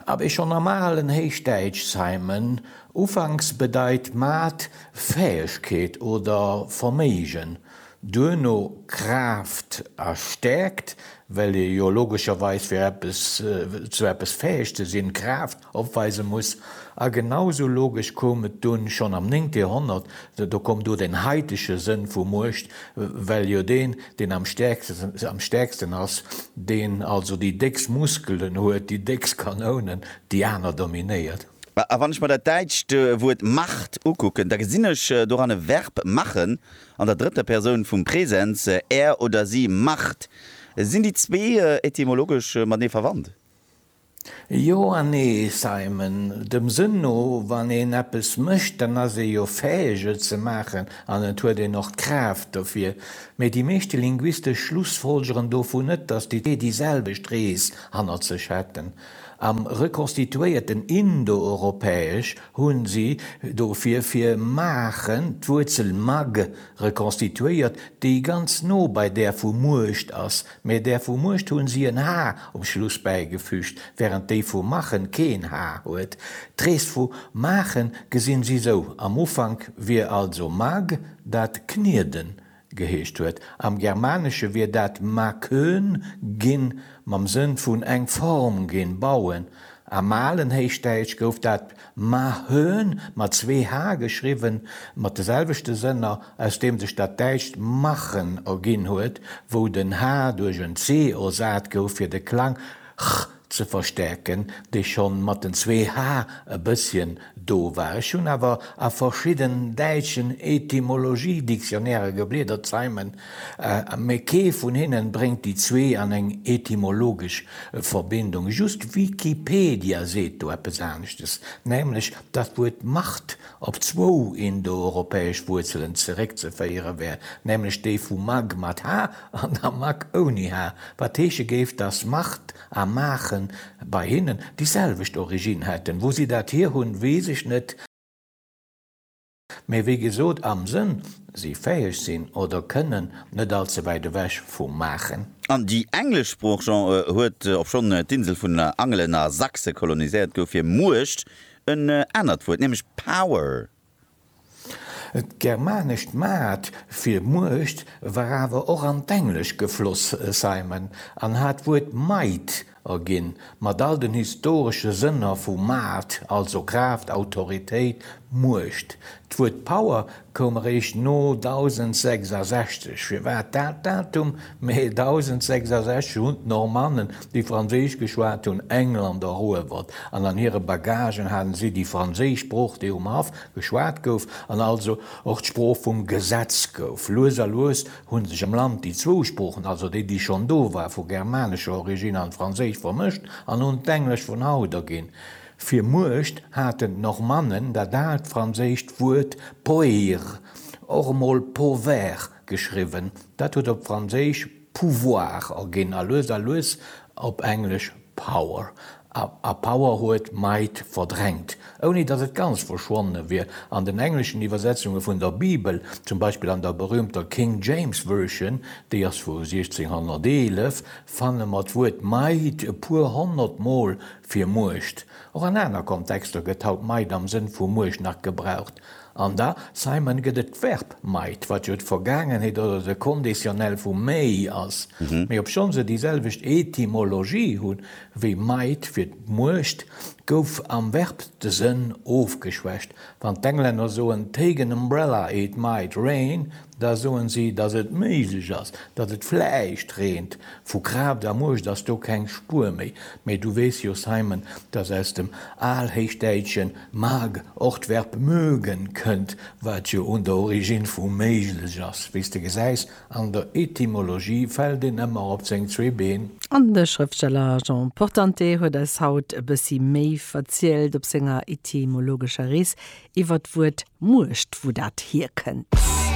A wéi schonn am alen Héichdäitsch Simon ufanks bedeit Maat Fäegkeet oder Verméigen, duerno Kraaft a Stäerkt, well ee jo logescherweis fir eppes zu eppes fäeg ze sinn, Kraaft opweise muss, a genau sou logesch koum et dunn schonn am néngte Joerhonnert, do koum do den haitege Sënn vu Muecht, Well jo deen, deen am stäerksten, am stäerksten ass, deen also déi déckst Muskelen huet, déi déckst Kanounen, déi aner dominéiert. A wann ech mer dat däitscht Wuert Macht ukucken, da gesinn ech doran e Verb machen an der drëtter Persoun vum Präsens, er oder si macht. Sinn déi zwee etymologesch matenee verwandt? Jo an nee, Simon. Dem Sënn no, wann een eppes mécht, dann ass ee jo fäeg, et ze maachen an et huet een och d'Kraaft dofir. Mee déi meeschte Linguiste schlussfolgeren dovun net, datt déi zwee déi selwecht Rees hannert sech hätten. Am rekonstituéierten Indoeuropäesch hu si dofir fir maachen d'Wuerzel mag rekonstituéiert, déi ganz no bei där vu Muecht ass, Mee där vu Muecht hunn si en H um Schluss bäigefüügt, wärend déi vu Machen keen H huet. D'Rees vu Maachen gesinn si sou, Am Ufank wier also Mag, dat Knieden geheescht huet. Am Germanesche wier dat Makön ginn, mam Sënn vun eng Form ginn, bauen. Am alen Héichdäitsch gouf dat Mahön, mat zwee h geschriwwen, mat de selwechte Sënner, aus deem sech dat däitscht machen erginn huet, wou den h duerch en c ersat gouf, fir de Klang ch ze verstäerken, dee scho mat den zwee h e bësschen do war. Ech hunn awer a verschidden däitschen Etymologie-Dictionnairen gebliedert, Simon Mee kee vun hinnen bréngt déi zwee an eng etymologesch Verbindung. Just Wikipedia seet do eppes aneschtes, nämlech datt d'Wuert Macht op zwou indoeuropäesch Wuerzelen zeréckzeféiere wär, nämlech déi vu mag mat h an der mak ouni h, wat heesche géif, datt Macht a Maache bei hinnen déi selwecht Originn hätten. Wou si dat hir hunn, weess ech net. Mee wéi gesot, am Sënn, si fäheg sinn oder kënnen, net all ze wäit ewech vu maachen. An déi englesch Sprooch, Jean, huet, obschonn d'Insel vun Angelen a Sachse koloniséiert gouf, fir Muecht en anert Wuert, nämlech power. D'germanescht maat fir Muecht war awer och an d'Englesch gefloss, Simon, an hat d'Wuert might A ginn, mat all den historesche Sënner vu Maart, also Kraaft, Autoritéit, Muecht. D'Wuert Power koum eréischt no 1066. Firwat dat Datum? Mä 1066 hunn d'Normannen, déi Franséisch geschwat hunn, England eruewert, an an hire Bagagen hate si déi franséisch Sprooch, déi um Haff geschwat gouf, an also och d'Sprooch vum Gesetz gouf. Lues a lues hunn sech am Land déi zwou Sproochen, also déi, déi schonn do war, vu germanescher Origine an Franséisch vermëscht an hunn d'Englesch vun haut erginn. Fir Muecht haten d'Normannen dat aalt franséischt Wuert poeir, och emol povair geschriwwen, dat huet op Franséisch pouvoir erginn a lues a lues op Englesch Power a Power huet Might verdrängt, ouni datt et ganz verschwonne wier. An den engleschen Iwwersetzunge vun der Bibel, zum Beispill an der berüümter King James Version, déi ass vu 1611, fanne mer d'Wuert Might e puer honnert Mol fir Muecht. Och an aner Kontexter gëtt haut Might am Sënn vu Muecht nach gebraucht. An da, Simon, gëtt et d'Verb might, wat jo d'Vergaangenheet oder de Conditionnel vu may ass, mee obschonn se déi selwecht Etymologie hu wéi might fir d'Muecht, gouf am Verb de Sënn ofgeschwächt. Wann d'Englänner soen, Take an umbrella, it might rain, Da soen si, datt et méiglech ass, datt et vläicht reent vu Kraaft a Muecht ass do keng Spuer méi. Mee du weess jo, Simon, datt aus dem Alhéichdäitschen mag och d'Verb mögen kënnt, wat jo un der Origine vu méiglech ass. Wéi s de gesäis, an der Etymologie fält een ëmmer op seng zwee Been. An de Schrëftsteller Jean Portante huet eis haut e bëssi méi verzielt op senger etymologescher Rees iwwer d'Wuert Muecht, wou dat hierkënnt.